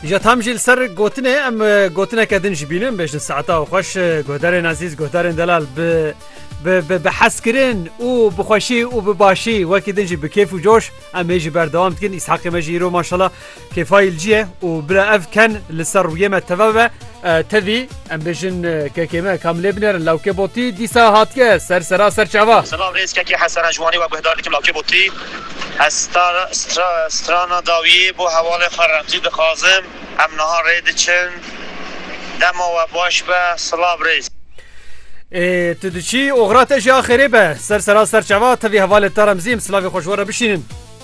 Ja tam jî li ser gotinê em gotineke din ji bînin bêjin saeta û xweş guhdarên ezîz guhdarên delal bi bi hezkirin û bi xweşî û bi başî wekî din jî bi kêf û coş em ê jî berdewam dikin îshaqê me jî îro maşala kêfayî li cî ye û bila ev ken li ser rûyê me teve be Tevî em bêjin kekê me kam lê binêrin lawkê botî dîsa hatiye ser sera ser çava. Selav rêz kekê Hesena ji Wanê we guhdar dikim lawkê botî ez strana dawiyê bo hewalê xwe remzî dixwazim em niha rê diçin dema we baş be silav rêz. Ê tu diçî oxira te jî axêrê be ser sera ser çava tevî hevalê te remzîm silavê xwe ji we re bişînin.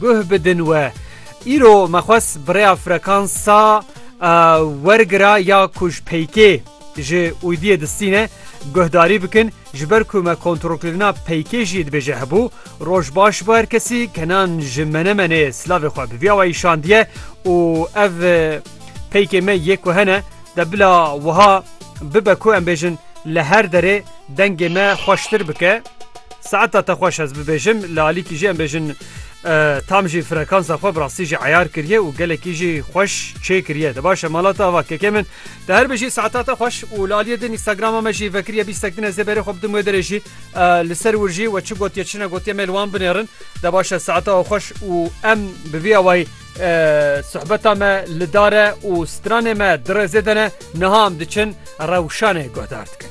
Guh bidin we. Îro me xwest bi rêya frekansa wergira ya ku ji peykê ji uydiyê distîne guhdarî bikin ji ber ku me kontrolkirina peykê jî dibêje hebû. Roj baş bo her kesî kenan ji menemenê silavê xwe bi vî awayî şandiye û ev peykê me yê ku hene de bila wiha bibe ku em bêjin li her derê Dengê me xweştir bike. Saeta te xweş ez bibêjim li alîkî jî em bêjin tam jî frekansa xwe bi rastî jî eyar kiriye û gelekî jî xweş çê kiriye te baş e mala te ava kekê min te her bijî saeta te xweş û li aliyê din Instagrama me jî vekiriye bîstek din ez ê berê xwe bidim wê derê jî li ser wir jî we çi gotiye çi ne gotiye me li wan binêrin te baş e saeta we xweş û em bi vî awayî sohbeta me li dare û stranê me dirêzê dene niha em diçin rewşanê guhdar dikin.